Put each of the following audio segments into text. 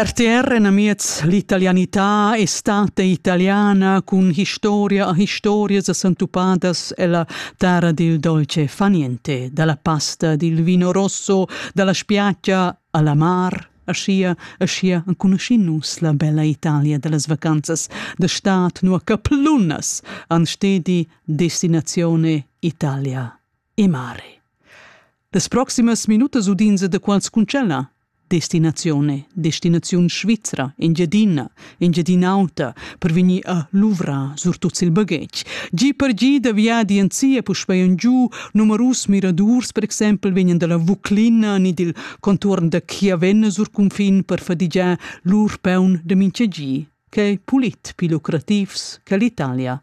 RTR en amiez l'italianità è stata italiana cun historia a historia s'antupadas ella terra dil dolce faniente, dalla pasta dil vino rosso, dalla spiaggia alla mar, aschia, aschia enconuschin nus la bella Italia dallas vacanzas da stad nua caplunnas han stedi destinazione Italia. e mare. Las proximas minutas udins da quants cuncella? Destinazione, destinaziun svizra, Engiadina, Engiadin'Auta, per vegnir a luvrar surtut il baghetg. Gi per gi da viadi en sia puspei en giu, numerus miradurs per exempel vegnan dalla Vuclina ni dil contuorn da Chiavenna sur cunfin per fadigiar lur peun da mincha gi. Quei pulit più lucrativs che l'Italia.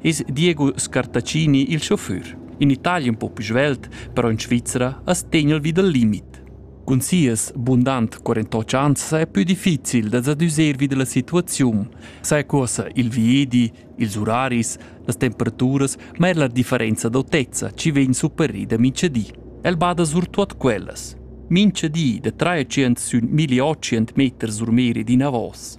es Diego Scartaccini il chauffeur. In Italia un po più svelt, però in Svizzera as tegna vi dal limit. Cun sias bundant 48 ans è più difficil da s'adüser vi dalla situaziun. Sai cosa il viedi, ils uraris, las temperaturas, ma er la differenza d'autezza ci vegn superrida mincha di. El bada surtuot quellas. Mincha di da 300 sun 1800 meter sur meri d'inavos.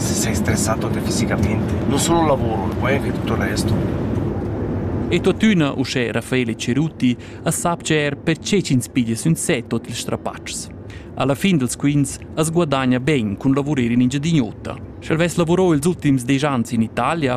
s'è stressato defisicamente. Non solo lavoro, poi anche tutto il resto. E tuttuna, uschè Raffaele Cerutti, as sapcha er perche ch'ins piglia sün se tot ils strapatschs. Alla fin dels quints as guadagna ben cun lavurer in Engiadin'Ota. Sch'el vess lavurò ils ultims desch ans in Italia,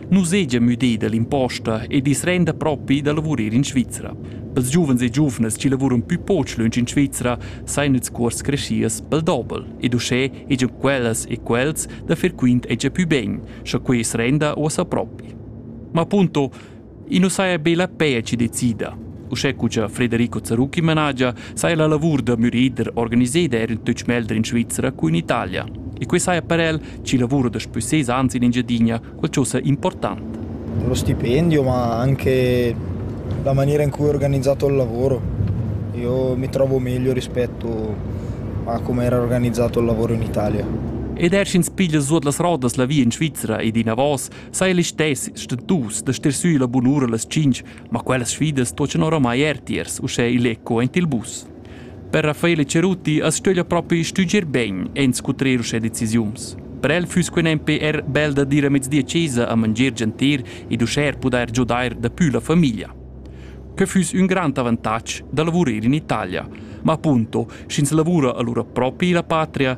nu seja müdà da l'imposta ed i's renda propi da lavurer in Svizra. Pels giuvens e giuvnas chi lavuran pü poch lönch in Svizra sajan ils cuors creschias pel dobel ed uschè hegian quellas e quels da fer quint hegia pü ben, scha quai as renda uossa propi. Ma appunto, i nu saja be la peja chi decida. Uschè cu cha Frederico Zarucchi managia, saja la lavur da mürider organiseda eir in tuch melder in Svizra cu in Italia. E quai saja per el chi lavura daspü ses ans in Engiadina, qualchosa important. Lo stipendio, ma anche la maniera in cui ho organizzato il lavoro. Io mi trovo meglio rispetto a come era organizzato il lavoro in Italia. Ed er sch'ins piglia suot las rodas la via in Svizzera ed inavos, sai listess stentus da stir sü la bunura las 5, ma quellas sfidas tochan oramai er tiers, uschè il eco ent il bus. Per Raffaele Cerutti as stöglia propi stüdger bain inscutrer uschè decisiuns. Per el füss quai nempe er bel da dir a mezdi a chesa a mangier gentir ed uschè er pudair giodair dapü la famiglia. Que füss ün grand avantatg da lavurer in Italia, ma appunto, sch'ins lavura alura propi la patria,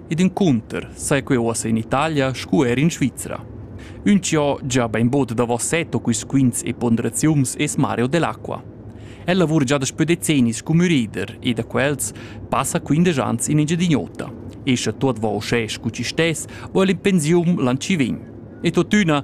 Ed encunter sai quei uossa in Italia sco er in Svizra. Ün chi ho già bainbod davos set o quisquints e ponderaziuns es Mario Delacqua. El lavura già daspö decennis cum mürider e da quels passa quindesch ans in Engiadin'Ota. Escha tuot vo uschè scu chi stess, o el in pensiun l'an chi vegn. E tuottüna